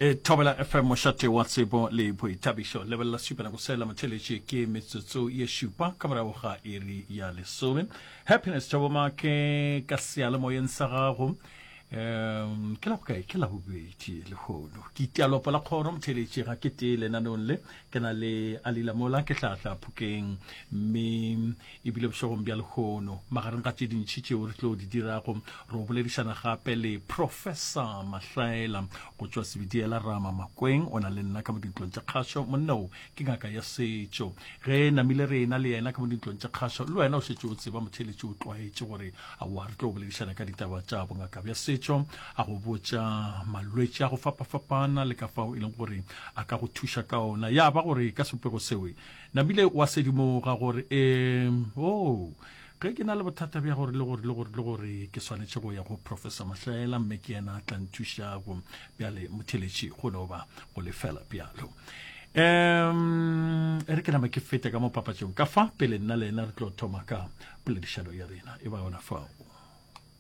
e thobela fm mošate wa tsebo le boithabišo lebelela supela go sela motheletše ke metsotso ye šupa ka morago ga iri ya lesome happiness tšabomake ka sealemoyeng sa gago um ke la bokae ke la bobedi lehono ke itialopo la kgoro motheletše ga ke tee lenanong le ke na le alilamola ke tlatla phokeng mme e bile bošegong bja lehono. Magareng ga tše dintši tšeo re tlo di dirago, re o boledišana gape le Profesa Mahlaela go tšwa Sebitiela Rama Makweng, o na le nna ka mo dintlong tša kgašo. Monna o ke ngaka ya setšo. Ge namile re ena le yena ka mo dintlong tša kgašo, le wena o šetše o tseba motheeletši o tlwaetše gore aowa re tlo boledišana ka ditaba tša bongaka bja setšo, a go botša malwetši a go fapafapana le ka fao e leng gore a ka go thuša ka ona. Ya ba gore ka sepego seo Nabile wa sedimoga gore um oo ge ke na le bothata bja gore le gore le gore le gore ke swanetše go ya go professor mahlaela mme ke yena a tla nthušago bjale motheletši go no ba go lefela bjalo um e re ke nama ke fete ka mo papatšong ka fa pele nna le ena re tlo thoma ka poledišano ya rena e ba yona fao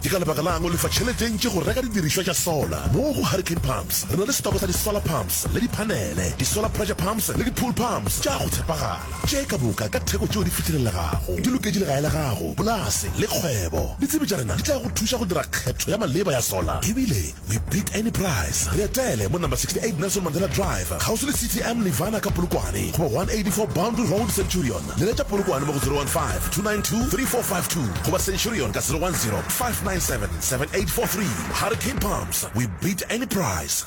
Ke ka lebaka la'ng o lefa tšhelete e ntši go reka didirišwa tša sola? Mo go Hurricane Pumps re na le setoko sa di-solar pumps le diphanele, di-solar pressure pumps le di-pool pumps tša go tshepagala, tše ka moka ka theko tšeo di fihlelelegago. Di loketše legae la gago, polase le kgwebo. Ditsebi tša rena di tla go thuša go dira kgetho ya maleba ya sola e bile We beat any price. Re etele mo number 68 Nelson Mandela Drive, kgauswi le CTM Nirvana ka Polokwane, goba 184 Boundary Road, Centurion. Leletša Polokwane mo go 015-292-3452 goba Centurion ka 010-597-7843. Hurricane Pumps, We beat any price.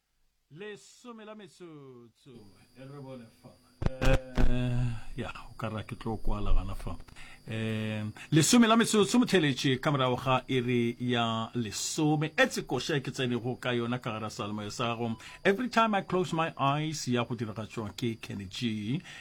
Lesome la metsotso e re bone fa eh, ya o ka ra ke tlo kwala gana fa eh, lesome la metsotso motheletše ka morago ga iri ya lesome e tsekoša e ke tsenego ka yona ka gara salemoya sa gago every time i close my eyes ya go diragatšwa ke kenny g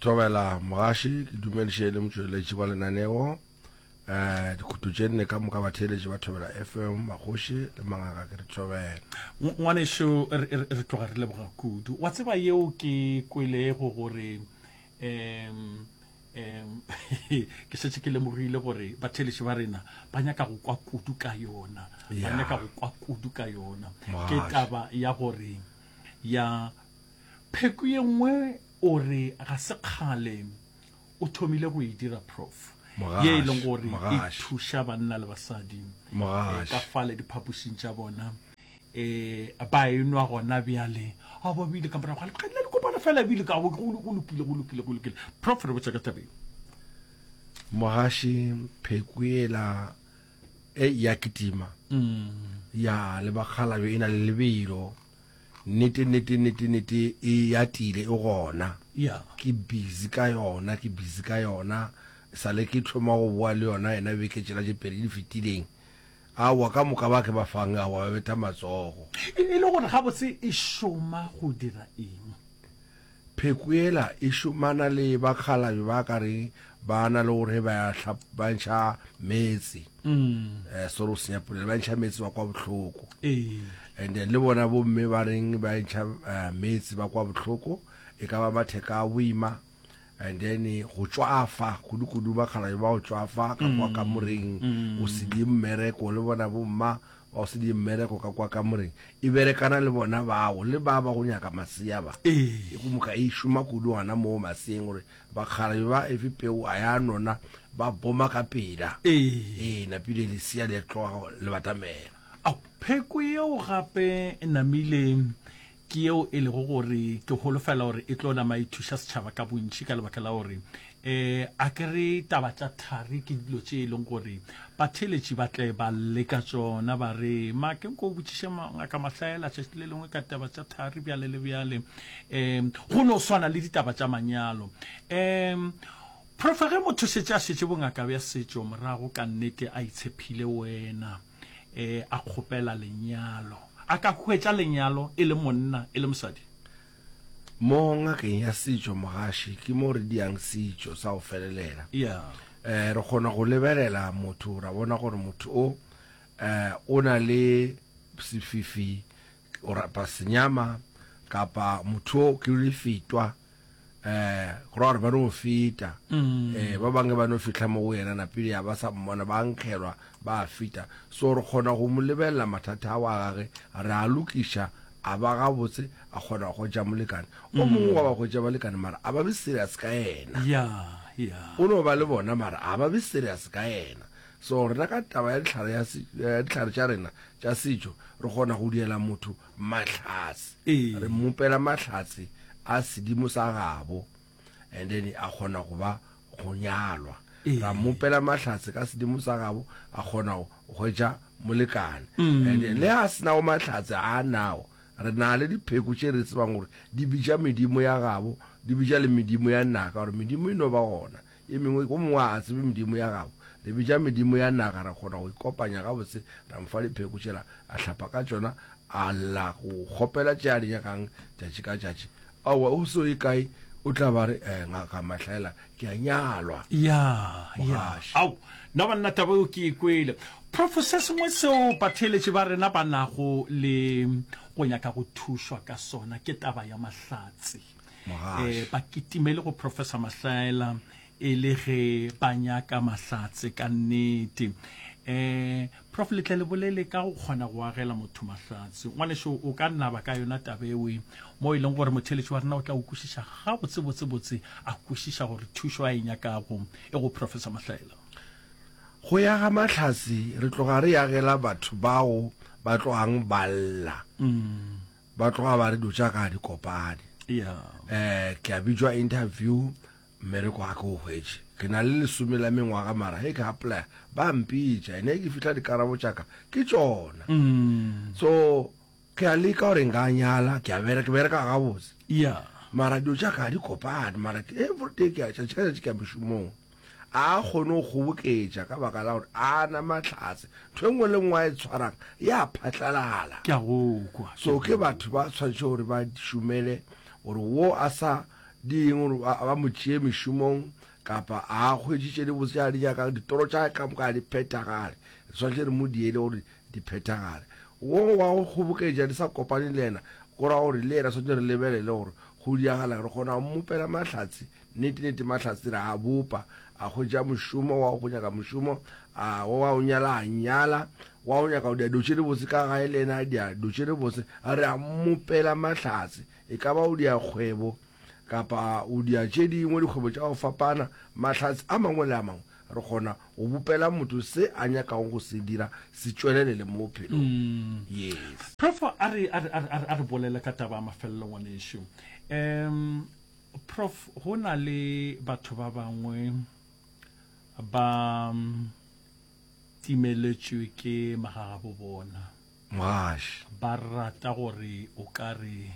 Thobela Mogaši, ke dumediše le motšweletši wa lenaneo. Eh, dikhuto tše nne ka moka batheeletši ba Thobela FM, Magoši le Mangaka ke di thobela. Ng- Ngwanešu re- re re tloga re leboga kudu. Wa tseba yeo ke kwelego gore em em ke šetše ke lemogile gore batheeletši ba rena ba nyaka go kwa kudu ka yona. Ba Ya. nyaka go kwa kudu ka yona. Ke Mogaši. taba ya gore ya Pheko ye nngwe o re ga se kgale o thomile go e dira, Prof. Ye e leng gore e thuša banna le basadi ka fale diphapošing tša bona. Ba e nwa gona bjale. A ba bile ka morago ga lekgadi la dikopano fela bile ka go lokile, go lokile, go lokile. Prof. Re botša ka taba ye. Mogaši, Pheko yela e ya kitima ya le bakgalabje e na le lebelo. Nnete, nnete, nnete, nnete e atile e gona. Ya. Ke busy ka yona, ke busy ka yona. Sale ke tlhoma go boa le yona yena beke tšela tše pedi di fetileng. Aowa, ka moka ba ke ba fang, aowa, ba betha matsogo. E le gore gabotse e šoma go dira eng? Pheko yela e šomana le bakgalabje ba ka re ba na le gore ba ba ntšha metse eh, sore o senya polelo ba ntšha metse ba kwa bohloko and then le bona bomme ba reng ba ntšha eh, metse ba kwa bohloko e ka ba matheka a boima and then go tšwafa kudu-kudu bakgalabje ba go tšwafa ka kwa kamoreng o sile mmereko le bona bomma Ba go se die mmereko ka kwa kamoreng, e berekana le bona bago le ba ba go nyaka masea ba. Ee. E go moka e šoma kudu gana moo maseeng gore bakgalabje ba efe peu a ya nona ba boma ka pela. Ee. E napile lesea le tloga go le batamela. Ao, pheko yeo gape e namile ke yeo e lego gore ke holofela gore e tlo nama e thuša setšhaba ka bontši ka lebaka la gore um a ke re taba tša thari ke dilo tše e leng gore batheeletši ba tle ba leka tsona ba re ma ke nko o botšiše ngaka mahlaela tšatši le lengwe ka taba tša thari bjale le bjale um go no swana le ditaba tša manyalo um profa ge motho šetše a šetše bongaka bja setšo morago ka nnete a itshephile wena e a kgopela lenyalo. A ka hwetša lenyalo e le monna e le mosadi? Mo ngakeng ya setšo, mogaši ke mo re diang setšo sa go felelela. E, re kgona go lebelela motho ra bona gore motho o e, o na le sefifi O rata senyama kapa motho o ke le fetwa eh go ra gore ba no feta mm. eh ba bangwe ba no fitla mo go yena na pele ya ba sa mmona ba nkgelwa ba fita so re kgona go mo lebelela mathata a wa gage re a lokiša a ba ga botse a kgona go ja molekane o mm. mongwe wa ba go ja balekane mara a ba be serious ka yena yeah yeah o no ba le bona mara a ba be serious ka yena So rena ka taba ya dihlare ya se, ya dihlare tša rena tša setšo re kgona go diela motho mahlatse, Ee. re mmopela mahlatse a sedimo sa gabo and then a kgona go ba go nyalwa, Ee. ra mmopela mahlatse ka sedimo sa gabo a kgona go hwetša molekane Mm. and then le a senago mahlatse a nago re na le dipheko tše re tsebang gore di bitša medimo ya gabo di bitša le medimo ya naka gore medimo e no ba gona Ye mengwe, Go mongwe a a tsebe medimo ya gago? Re bitša medimo ya naga, ra kgona go ikopanya gabotse, ra mo fa dipheko tšela a hlapa ka tšona, a lla go kgopela tše a di nyakang tšatši ka tšatši. Aowa, o se o ye kae, o tla ba re, Ee, Ngaka Mahlaela, ke a nyalwa. Ya, ya. Ao, na banna taba yeo ke e kwele. Profo, se sengwe seo batheeletši ba rena ba nago le go nyaka go thušwa ka sona ke taba ya mahlatse. e ba kitimele go professor mahlaela e le ge ba nyaka mahlatse ka nnete um prof letle le bolele ka go kgona go agela motho mahlatse ngwaneso o ka naba ka yona tabewe mo e leng gore motheletši wa rena o tla o kwešiša gabotsebotsebotse a kwešiša gore thušo a e nyakago e go professor mahlaela go ya ga mahlatse re tloga re yagela batho bao ba tlogang ba lla mm. ba tloga ba re dilo tša ka a di kopane um ke a bitšwa interview mmereko ga ke o hwetše ke na le lesome la mengwaga mara ge ke apply ba mpitša ene ke fitlha dikarabo tšaka ke tšona mm. so ke a leka gore nka nyala ke a bereka bereka gabotse mara dilo tšaka ga di kopane mara everyday ke a tšatši ka tšatši ke a mešomong A a kgone go kgoboketša ka baka la gore a na mahlatse. Ntho e nngwe le nngwe a e tshwarang ya phatlalala. Ke a go kwa. So ke batho ba tshwanetse gore ba šomele gore wo a sa di eng gore ba, ba mo tšee mešomong kapa a a hweditše le botse a di nyakang. Ditoro tša ka moka ga di phethagale. Re tshwanetse re mo diele gore di phethagale. Wo wa go kgoboketša di sa kopane le yena, go ra gore le yena tshwanetse re lebelele gore go diragala, re kgona go mmopela mahlatse Nnete-nnete, Mahlatse re a bopa, a hwetša mošomo, wa go nyaka mošomo, a wa go nyala, a nyala, wa go nyaka diado tše dibotse ka gae le yena, diado tše dibotse. Re a mmopela Mahlatse, e ka ba o dia kgwebo kapa o dia tše dingwe, dikgwebo tša go fapana, mahlatse a mangwe le a mangwe. Re kgona go bopela motho se a nyakago go se dira se tšwelelele mo bophelong. Yes. Profo, a re, a re, a re, a re, a re bolele ka taba ya mafelelo, ngwanešu. Um, Prof, go na le batho ba bangwe ba timeletšwe ke magagabo bona. Mgash. Ba rata gore o ka re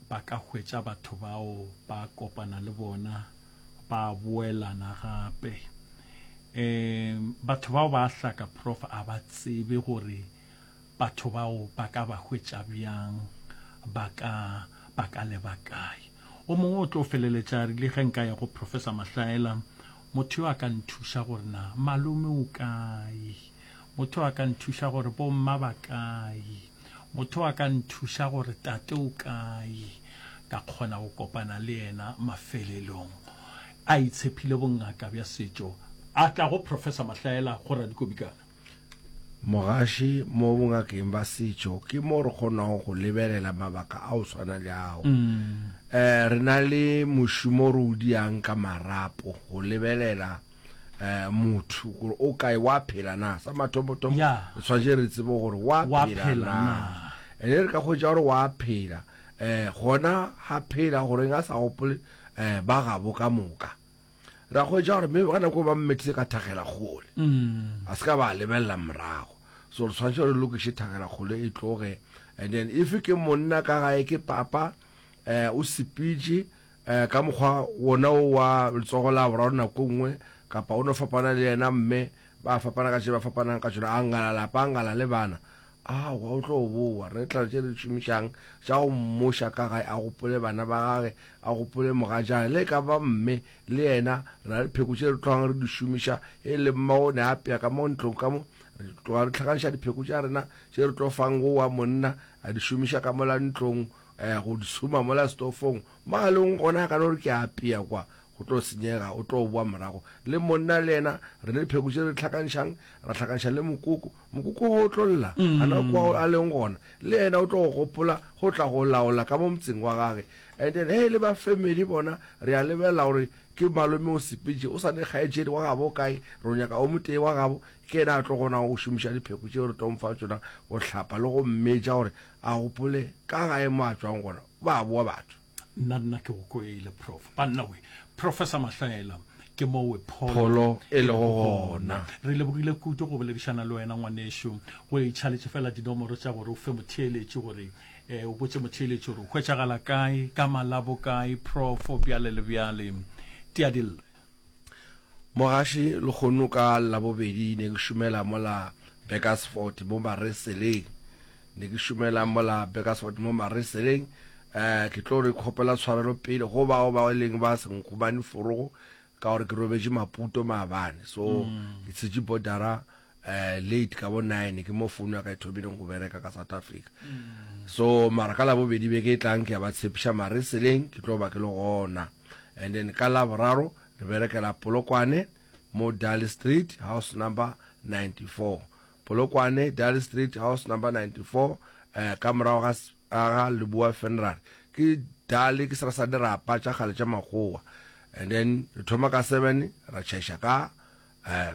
ba ka hwetša batho bao ba kopana le bona ba boelana gape. Um batho bao ba a hlaka prof a ba tsebe gore Batho bao ba ka ba hwetša bjang? Ba ka ba ka leba kae? O mongwe o tlo feleletša a rile, Ge nka ya go Professor Mahlaela, motho yo a ka nthuša gore na malome o kae? Motho a ka nthuša gore bomma ba kae? Motho a ka nthuša gore tate o kae? Ka kgona go kopana le yena mafelelong. A itshepile bongaka bja setšo. A tla go Professor Mahlaela, go Radikobikana. Mogaši mo bongakeng ba setšo ke mo re kgonago go lebelela mabaka a o tshwana le ao. Eh, re na le mošomo re o diang ka marapo go lebelela eh motho gore o kae wa phela na sa mathomothomo yeah. re tshwanetse re tsebe gore wa phela na ene re ka kgwetsa gore wa phela eh gona ga phela goreng a sa gopole eh ba gabo ka moka Re a hwetša gore maybe ka nako e ba mmethile ka thagelakgole, mm. a se ka ba a lebelela morago. So re tshwanetse re lokiše thagelakgole e tloge, and then if ke monna ka gae ke papa eh, o sepitše eh, ka mokgwa wona o wa letsogo la boraro nako nngwe kapa o no fapana le yena mme ba fapana ka tše ba fapanang ka tšona a ngala lapa a ngala le bana Aowa, o tlo bowa. Re tla tše re di šomišang tša go mmoša ka gae, a gopole bana ba gage, a gopole mogatšae, le e ka ba mme le yena. Re na le dipheko tše re tlogang re di šomiša, e le mma o ne a apea ka mo ntlong ka mo. Re tloga re hlakanša dipheko tša rena tše re tlo fang wowa monna a di šomiša ka mola ntlong, eh, go di tshuma mola setofong. Magalong gona a ka no re ke a apea kwa, go tlo senyega, o tlo bowa morago. Le monna le yena re na le dipheko tše re di hlakanšang, ra hlakanša le mokoko, Mokoko wo o tlo lla, gana kwa a leng gona, le yena o tlo go gopola go tla go laola ka mo motseng wa gage. And then he e le ba family bona, re a lebelela gore ke malome o sepetše, o sa ne kgaetšedi wa gabo o kae, ro nyaka o motee wa gabo, ke yena a tlo kgonago go šomiša dipheko tšeo re tlo mo fa tšona go hlapa le go mmetša gore a gopole ka gae mo a tšwang gona. Ba boa batho. Nna nna ke go kwele prof. Banna we. Professor Mahlaela ke mo we pholo, pholo e lego gona. Re lebogile kudu go boledišana le wena ngwanešu. Go e tšhaletše fela dinomoro tša gore o fe motheeletši gore e, o botše motheeletši gore o hwetšagala kae, ka Malabo kae, prof. Bjale le bjale. Tia dille. Mogaši, Lehono ka Labobedi ne ke šomela mola Burgersfort mo Mareseleng. Ne ke šomela mola Burgersfort mo Mareseleng. Eh, ke tlo re kgopela tshwarelo pele go bao ba e leng ba se nkgumane forogo ka gore ke robetše Maputo maabane. So, ke tshetše bodara eh, late ka bo nine, ke mo founu ya ka e thomileng go bereka ka South Africa. So, mara ka Labobedi beke e tlang ke ya ba tshepiša Mareseleng ke tlo ba ke le gona. and then ka laboraro re berekela polokwane mo dally street house number 94 polokwane dally street house number 94 um ka morago ga ga leboa funeral ke dally ke sera sa dirapa tša kgale tša makgowa and then re thoma ka seven ra tšhaiša ka um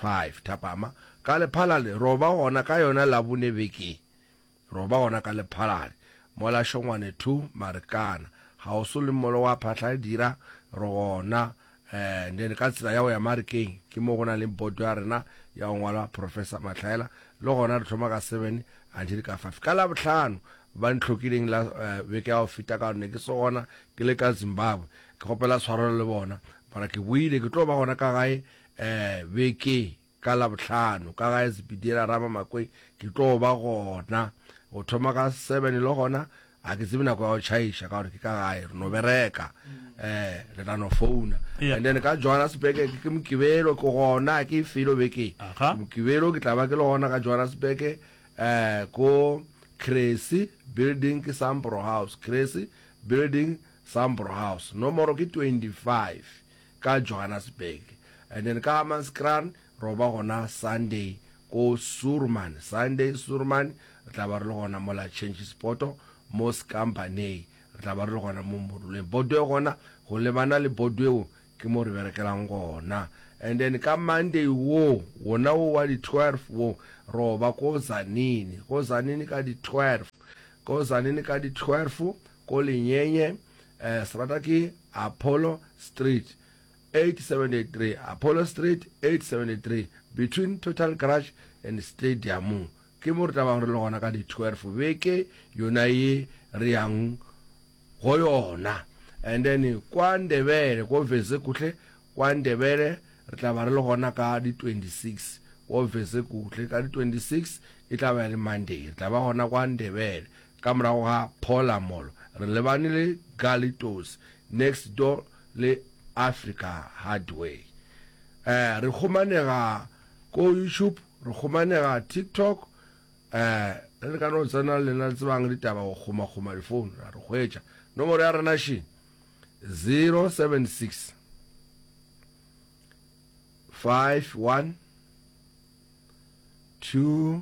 five thapama ka lephalale roba gona ka yona labone beke Roba gona ka lephalane mola Šongwane Thu Marikana ga o so le mmolo wa phahla dira re gona eh then ka tsela ya go ya Marikeng ke mo go na leng boto ya rena ya go ngwalwa Professor Matlhaela le gona re thoma ka seven until ka five ka Labohlano ba ntlhokileng la eh beke ya go feta ka gore ne ke se gona ke le ka Zimbabwe ke kgopela tshwarelo le bona mara ke boile ke tlo ba gona ka gae eh beke Ka Labohlano, ka gae Sepitiela Ramamakwei, ke tlo ba gona go thoma ka seven. Le gona ga ke tsebe nako ya go tšhaiša ka gore ke ka gae, re no bereka, um le tla no founa. And then ka Johannesburg ke ke Mokibelo, ke gona, ga ke e felo bekeng. Ke Mokibelo, ke tla ba ke le gona ka Johannesburg, um ko Cressy Building, ke Sambro House, Cressy Building, Sambro House. Nomoro ke twenty-five, ka Johannesburg and then ka Hammanskraal ro ba gona Sunday ko Suurman, Sunday Suurman re tla ba re le gona mola Changes Poto mo Skambanei re tla ba re le gona mo Moruleng Bodwe gona go lebana le Bodwe wo ke mo re berekelang gona and then ka Monday wo wona wo wa di 12 wo ro ba ko Tzaneen, ko Tzaneen ka di 12, ko Tzaneen ka di 12 ko Lenyenye, serata ke Apollo Street 873, Apollo Street 873, between Total Garage and Stadium. Ke mo re tla bago re le gona ka di 12 beke yona ye re yang go yona. And then kwa Ndebele, ko Vezekuhle, kwa Ndebele re tla ba re le gona ka di 26, ko Vezekuhle ka di 26 e tla ba e le Monday re tla ba gona kwa Ndebele. Ka morago ga Phola Mall re lebane le Gully Toes next door le Africa Hardware. Eh re humanega ko YouTube, re humanega TikTok eh re le ka no tsena le lena le tsebang ditaba go huma huma di phone ra re hwetša. Nomoro ya rena she 076 51 2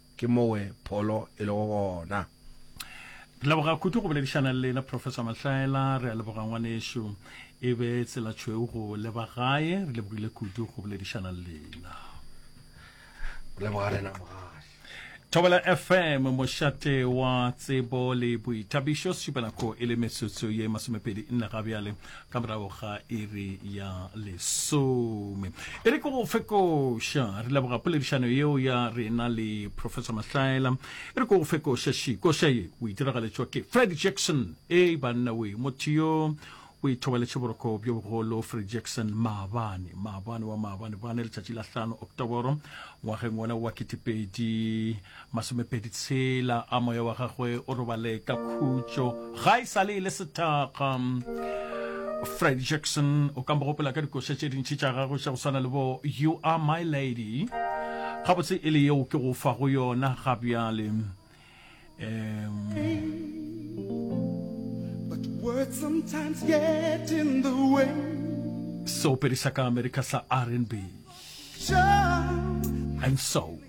Ke mowe pholo e lego gona. Re leboga kudu go boledišana le lena Professor Mahlaela, re a leboga ngwanešu e be tsela tšhweu go leba gae, re lebogile kudu go boledišana le lena. Re leboga rena mogale. Thobela FM mošate wa tsebo le boithabišo, Sešupanako e le metsotso ye masomepedi nne ga bjale. ka morago ga iri ya lesome e re ke go fekoša re leboga poledišano yeo ya rena le professor mahlaela e re ke go fekoša šikoša ye o itiragaletswa ke fred jackson e banna oe motho yo o ithobaletše boroko bjo bogolo fred jackson maabane maabane wa maabane bane letšatši la hlano oktoboro ngwageng wona wa ketepedi Masomepedi tshela a moya wa gagwe o robale ka khutšo ga e sale e le sethakga. Freddie Jackson o ka mo gopola ka dikoša tše dintši tša gagwe tša go swana le bo You Are My Lady, gabotse e le yeo ke go fa go yona ga bjale. Seopedi sa ka Amerika sa R and B and Soul.